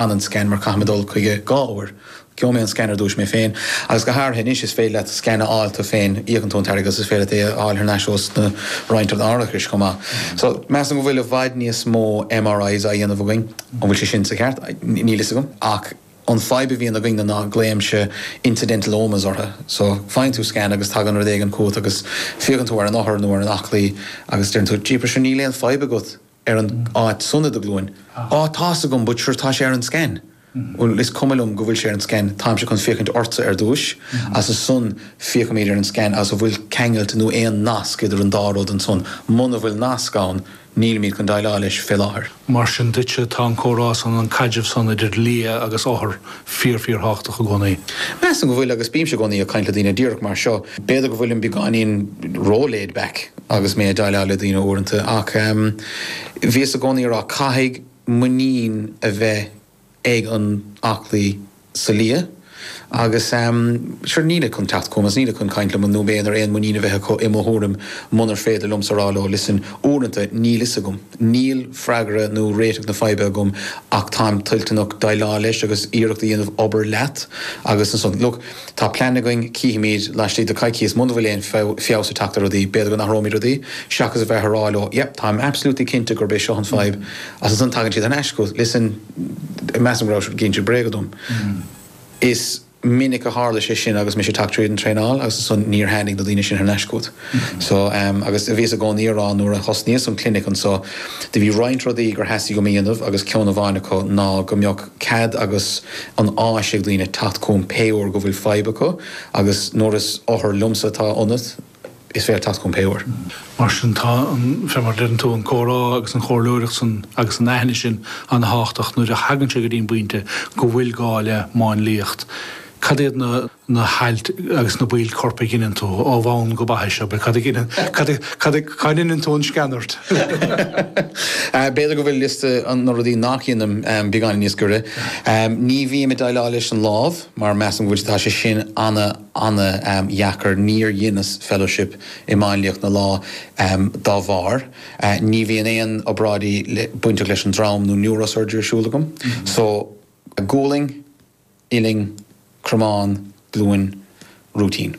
Fan an scan mar caithfidh mé dul chuige dhá uair. Gheobha mé an scan ar dtúis mé féin. Agus go hairithe anois is féidir leat scan a fháil tú féin. Íocann tú an t-airgead agus is féidir leat é a fháil thar n-ais ós na roinnt árachais chomh maith. So, measaim go bhfuil i bhfad níos mó MRIs á dhéanamh againn. An bhfuil sé sin sa cheart? Níl fhios agam. Ach an fadhb a bhíonn againn na ná glaoimse incidentalomas orthu. So, faigheann tú scan agus tagann rud éigin chugat agus féachann tú ar an othar nó ar an aclaí agus deireann tú, jeepers sure níl aon fadhb agat. ar an áit san i do ghlúin. Á, tá's agam, but sure tá sé ar an scan. Bhuel, is cuma liom go bhfuil sé ar an scan, táimse chun féachaint ortsa ar dtúis, agus ansan féachaimid ar an scan agus an bhfuil ceangailt nó aon nasc idir an dá rud ansan. Muna bhfuil nasc ann, nílimid chun déileáil leis fé láthair. Mar sin duitse, tá an comhrá san, an caidreamh san idir lia agus othar, fíor fíor-thábhachtach i gcónaí. Measaim go bhfuil agus bímse i gcónaí ag caint le daoine díreach mar seo. B'fhéidir go bhfuilim beagáinín ró-laid back agus mé ag déileáil le daoine uaireanta ach bhíos i gcónaí ag rá caithfidh muinín a bheith ag an aclaí sa lia agus sure nílid chun teacht chugam agus nílid chun caint liom nó mé inar aon muinín a bheith acu i mo thuairim munar féidir liomsa a rá leo listen uaireanta níl 'fhios agam. Níl freagra nó réiteach na faidhbe agam ach táim toilteanach déileáil leis agus iarracht a dhéanamh obair leat agus ansan, look, tá plean againn, cífimíd laistigh de coicíos muna bhfuil aon feabhas ag teacht ar rudaí, b'fhéidir go n-athróimid rudaí seachas a bheith ag rá leo, yep, táim absolutely cinnte gurb é seo an fadhb agus ansan tagann siad thar n-ais chugat, listen, measaim go raibh sé ag inse bréaga dom. Is. minic a tharla sé sin agus mise tagtha tríd an traenáil agus ansan níor tháinig na daoine sin thar n-ais chugat so em agus bhíos i gcónaí ag rá nuair a thosnaíos an clinic anso do bhí roinnt rudaí gur theastaigh uaim a dhéanamh agus ceann amháin acu ná go mbeadh cead agus an áis ag daoine teacht chugam pé uair go bhfuil fadhb acu agus nuair is othar liomsa atá ionat is féidir leat teacht chugam pé uair. Mar sin, tá an, fé mar a deireann tú, an comhrá agus an chomhairleoireacht san agus an aithne sin an-tábhachtach nuair a thagann sé go dtí an bpointe go bhfuil gá le máinliacht. Cad iad na na hailt agus na baill coirp a dheineann tú, ó bhonn go baithis, cad a dheineann cad cad a cá ndeineann tú an sceanairt? B'fhéidir go bhfuil liosta na rudaí nach ndeinim beagáinín níos giorra. Ní bhím ag déileáil leis an lámh mar measaim go bhfuil tá sé sin ana, ana dheacair. Níor dheineas fellowship i máinliacht na lámh dá bharr. Ní bhíonn aon obráidí bainteach leis an drom nó neurosurgery ar siúl agam. So, gualainn, uillinn, cromán, glúin, rúitín.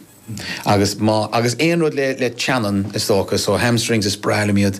Agus má, agus aon rud le teannáin is dócha. So, hamstrings is breá liom iad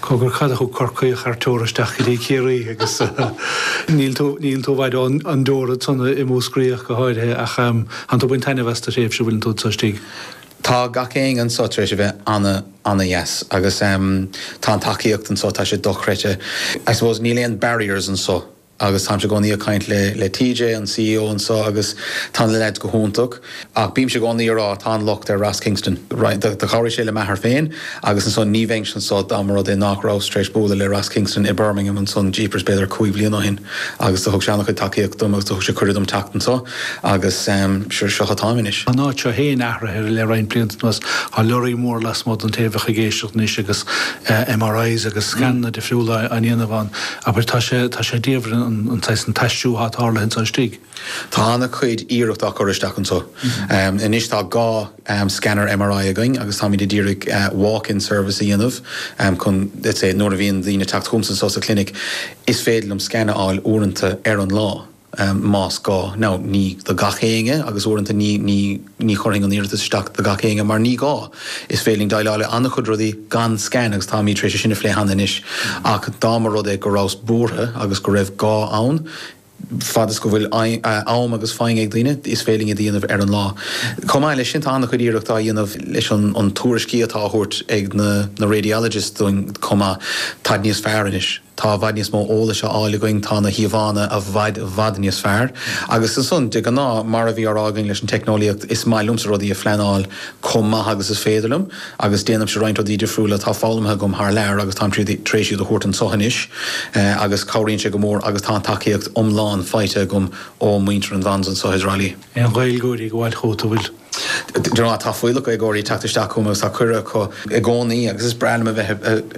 Cogar, cad a thug Corcaíoch thar teora isteach go dtí Ciarraí agus níl tú, níl tú i bhfad ón dteora ansan i Múscraí ach go háirithe ach tánn tú ag baint taitneamh as do thréimhse an bhfuil tú anso istigh. Tá gach éinne anso tar éis a bheith ana, ana dheas agus tá an tacaíocht anso, tá sé dochreidthe. I suppose níl aon barriers anso. Agus táimse i gcónaí ag caint le TJ, an C.E.O. anseo agus tá na leaids go hiontach. Ach bímse i gcónaí ag rá, tá an locht ar Ross Kingston. Do chabhraigh sé le m'athair féin agus ansan ní bheinnse anseo dá mba rud é nách rabhas tar éis bualadh le Ross Kingston i mBirmingham ansan jeepers b'fhéidir cúig bhliana ó shin agus do thug sé ana-chuid tacaíocht dom agus do thug sé cuireadh dom teacht anseo agus seo atáim anois. Tá an áit seo féin athraithe le roinnt blianta anuas. Tá lorraí mór lasmuigh don taobh a bheadh ag éisteacht anois agus MRIs agus scananna difriúla á ndéanamh ann. Abair, tá sé, tá sé diabhail an saghas, an t-aistriú atá tarlaithe anseo istigh. Tá ana-chuid iarracht á chur isteach anseo. Anois tá dhá scanner MRI againn agus táimid a d'iarraidh walk-in service a dhéanamh chun, let's say, nuair a bhíonn daoine ag teacht chugam anseo sa chlinic, is féidir liom scan a fháil uaireanta ar an lá. em, más gá. Now, ní do gach éinne agus uaireanta ní, ní, ní chuirfinn an iarratas isteach do gach éinne mar ní gá. Is féidir linn déileáil le an-chuid rudaí gan scan agus táimid tar éis é sin a phlé cheana anois ach dá mba rud é go rabhas buartha agus go raibh gá ann, fad is go bhfuil eh, am agus foighne ag daoine, is féidir linn iad a dhéanamh ar an lá. Chomh maith leis sin tá an-chuid iarracht á dhéanamh leis an, an tuairiscí atá á thabhairt ag na, na radiologists dúinn chomh maith, táid níos fearr anois. Tá i bhfad níos mó eolais á fháil againn, tá na híomhánna i bhfad, bhfad níos fearr. Agus ansan, de ghnáth, mar a bhí á rá againn leis an teicneolaíocht, is maith liomsa rudaí a phleanáil chomh maith agus is féidir liom. Agus déanaimse roinnt rudaí difriúla atá foghlamtha agam thar lear agus táim tríd, tar éis iad a thabhairt anseo anois. Agus cabhraíonn sé go mór agus tá an tacaíocht iomlán faighte agam ó mhuintir an Bons anseo i dTrá Lí. Aon Ghaeilgeoirí ag gabháil chugat, an bhfuil? De ghnáth, tá fuíollach Gaeilgeoirí ag teacht isteach chugam agus tá cuireadh acu i gcónaí agus is breá liom a bheith i,